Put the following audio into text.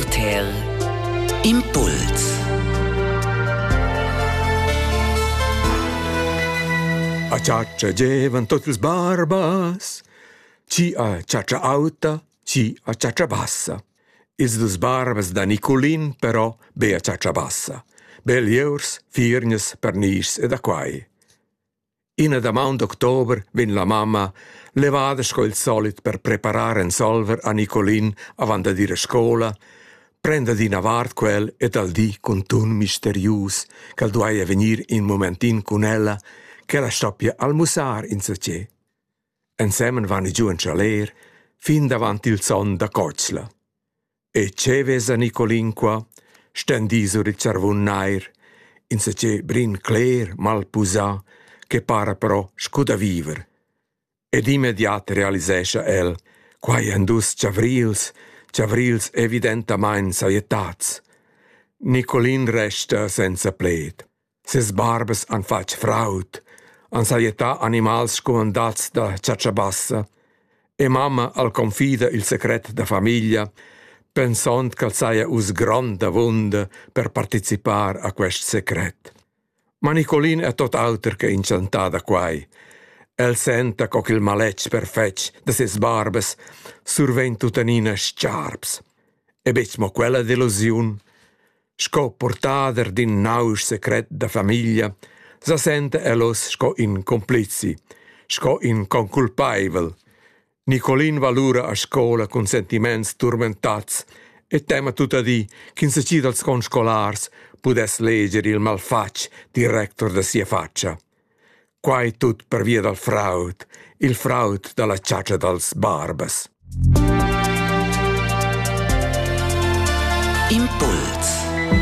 RTL Impuls A chatscha gievan tot ils barbas Ci a chatscha auta, ci a chatscha bassa. Ils dus barbas da Niculin però be a chatscha bassa. Belieurs, firgnas, pernischs e da quai. Ina damaun d'october vegn la mamma, levada sco il solit per preparar ensolver a Nicolin avant dad ir a scola, prenda d'ina vart quel e dal di cun tun misterius ch'el duaja vegnir in momentin cun ella, ch'ella stoppia almussar insatgè. Ensemen van i giu en chaler fin davant il son da cotschla. E che vesa Nicolin qua? stendì sur il charvun nair, insatgè brin cler, mal pusà, che para però scu da viver. Ed immediat realisescha el, quai èn dus chavrils, chavrils evidentamain sajettats. Nicolin resta senza pled. Ses barbas han fatg fraud, han sajettà animals scumandats da chatscha bassa e mamma al confida il secret da famiglia, pensond ch'el saja uss grond avunda per participar a quest secret. Ma Nicolin è tot auter che inchantà da quai. El senta co ch'il maletg perfetg da ses barbas survegn tuttenina stgarps. E betg mo quella delusiun. Sco purtader d'ün nausch secret da famiglia sa senta el oz sco ün cumplizi, sco ün conculpaivel. Nicolin valura a scola cun sentimaints turmentats e tema tuttadì ch'insatgi dals conscolars pudess leger il malfatg director da sia fatscha. Quai tut pervia dal fraud, il fraud da la chatscha dals barbas. Impuls